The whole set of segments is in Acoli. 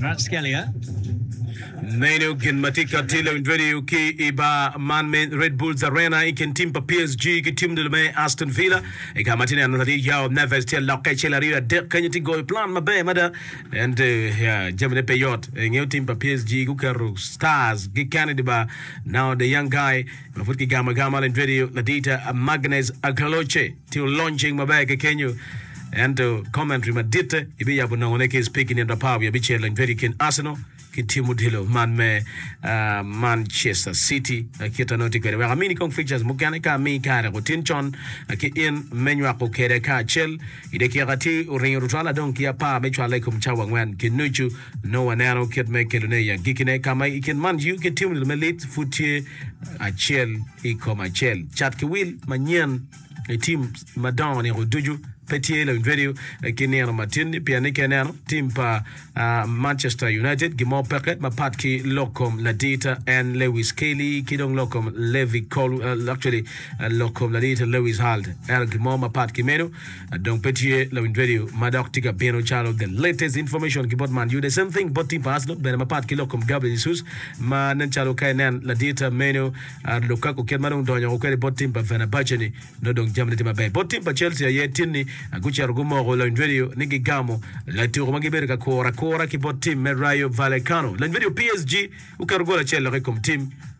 Rapskelia, Meno gin ma tika tye i radio ki i bar man me Red Bulls Arena i kin tim pa PSG ki tim dul me Aston Villa. I ka ma tye neno tye Joao Neves tye lok kacel aryo adek kenyo tye goyo plan maber mada. En te ya, jamine pe yot. Ingeyo tim pa PSG guketo stars gi Kennedy ba now the young guy Ma pud ki gamo agama lend radio ladita Magnez Agaloce tye olony cing maber ki kenyo ento commentary maditte ibi yabo nongo ne ki speak nino apar wiye bicel lend radio kin Arsenal ki team odilo man me uh, Manchester City kit anongo tye kwede wek amini kong fixtures mukene ka ami kare otin con ki in me nywako kede ka acel i dakika tye oringo tutwal adong ki apar me cwale i kom cawa angwen ki nucu Nongo waneno kit ma ekelone i agikkine, ka ma i kin man Jew ki Teomnil me lit pud tye acel i kom acel. Cat ki wil manyen i tim madongo niko ducu pe tye i loyo redio ki nino matin-ni, pien ni ka ineno tim pa Manchester United, gin mo peke mapat ki lok kom ladirta en Lewis Kelly ki dong lok kom Levi Col, actually lok kom ladirta Lewis Hall. Ento gin mo mapat ki meno, Dong pe tye lawiny radio ma dok tye ka bino calo the latest information ki bot Man U. The same thing bot team pa Arsenal bene mapat ki lok kom Gabriel Jesus ma nen calo ka inen ladit meno Lukaku kit ma dong donyo woko kwede bot team pa Fenerbahce ni nongo dong jamine tye maber. Bot team pa Chelsea aye tin ni gucito gumoko lawiny radio ni gigamo latuku ma gibedo ka kuro akura ki bot team me Rayo Vallecano. Lawiny radio PSG oketo gol acel lok i kom team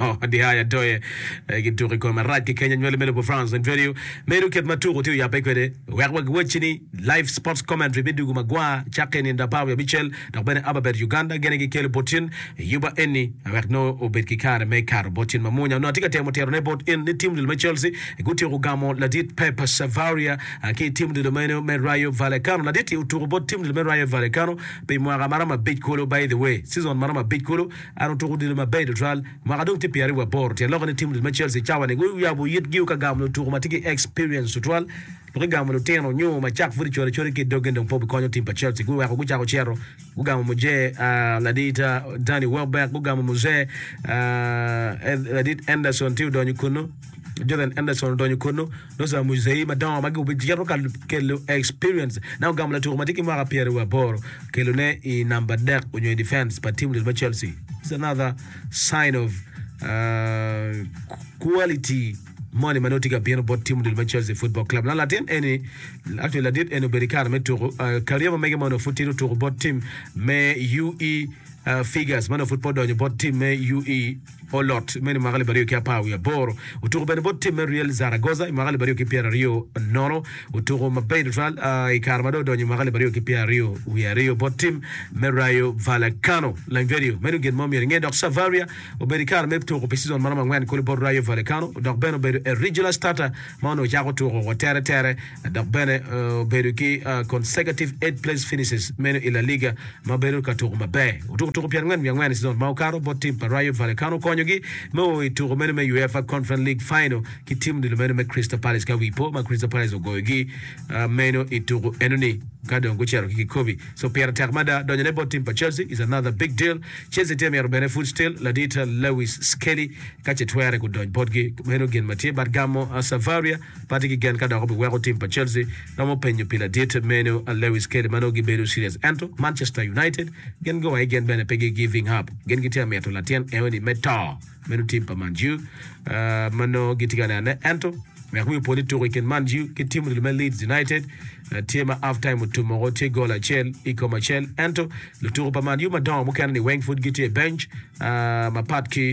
Oh, Dihayo Adoye gi tuk i kome rac ki Kenya nywali me lobo France and Radio medo kit ma tuku tye oyabbe kwede. Wek wagiwacci ni Live Sports Commentary me Dugu Magwar cakke i nino apar wiye abicel dok bene Ababet Uganda gene gikelo bot cen i yuba eni wek nongo obed ki kare me kato bot cen mamunya onongo atye ka temo tito ne bot in ni tim odilo me Chelsea gutyeko gamo ladit Pep Savaria ki tim odilo meno me Rayo Vallecano. Ladit-ti otuku bot tim odilo me Rayo Vallecano pi mwaka maromo abic kulu by the way season maromo abic kulu An otuko odilo maber i Lutral mwaka dong tye pyeraryo wa boro. Tyen lokke ni tim odilo me Chelsea cawa ni guyabo yit giu ka gamo lutuko ma tye ki experience tutwal. Pe gigamo lutino nyo ma cak pud icodo acoda ki idog gin dong po bikonyo tim pa Chelsea. Guweko gucako cito gugamo muje ladit Danny Welbeck, gugamo muje ladit Enderson tye odonyo kunu, Jordan Enderson odonyo kunu. Loc pa Mucwayi madongo magi obicito ka kelo experience na ogamo latuko matye ki mwaka pyeraryo wa aboro kelo ne i namba adek onyo i defense pa team lel me Chelsea. It's another sign of uh, quality moni manongo tye ka bino bot team lel me Chelsea Football Club. Na latin eni, actually ladit eni obedo i kare me tuko, uh, career ma mege mono pud tye tuko bot team me UE uh, Figures, mano pud pe odonyo bot team me UE bot Lot me ni mwaka alip aryo ki apar wiye aboro. Otuko bene bot tim me Real Zaragoza i mwaka alip aryo ki pyeraryo nono. Otuko maber tutwal i kare ma dong odonyo i mwaka alip aryo ki pyeraryo wiye aryo bot tim me Rayo Vallecano. Lainverio, meno gin mo myero inge dok Savaria obedo i kare me tuko pi cizon ma romo angwen kulu bot Rayo Vallecano dok bene obedo irregular starter ma onongo cako tuko wa tere tere dok bene obedo ki consecutive eight place finishes meno i La Liga ma bedo ka tuko maber. Otuko tuko pyerangwen wiye angwen i sizon ma okato bot tim pa Rayo Vallecano konyogi me o i tuko meno me UEFA Conference League Final ki tim odilo meno me Crystal Palace ka wi po ma Crystal Palace ogoyogi meno i tuko enoni ka dong gucito ki kikobi. So pire tek mada. Donyone bot tim pa Chelsea is another big deal. Chelsea tye mito bene pud still ladit Lewis Skelly ka ce twere gudony botgi. Meno gin ma tye but gamo Savaria Pati ki gen ka dok obiweko tim pa Chelsea romo penyo pi ladit meno Lewis Kelly ma nongo gibedo serious ento Manchester United gin gua i gen bene pe gi giving up gin gitye ka mito latin eoni me to meno tim pa Man U ma nongo gitye ka nene ento wek wi opo ni tuko i kin Man U ki tim odilo me Leeds United tye ma half time otummoko tye goal acel i kom acel ento lutuko pa Man U madongo mukene ni weng pud gitye i bench mapat ki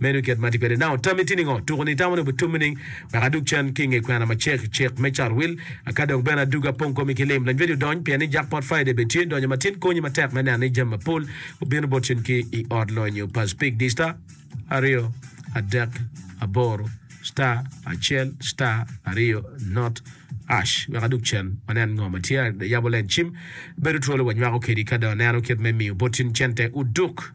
Meno i kit ma atye kwede. Nano tammi tye ningo? Tuku ni itamo ni obitummi nining wek adug cen ki i nge kwena ma cek cek me carwil? Aka dong bene adug apong komi ki lim? Lanywedi odony, pien ni Jackpot Friday bene tye. Donyo matin konyi matek me neno ni jami mapol obino bot cen ki i ot lonyo pa Speak di star aryo adek aboro star acel star aryo not ash wek adug cen wanen ngo ma tye. Ayabo len cim bedo twolo wanywako kedi ka dong aneno kit me miyo bot cen cente oduk.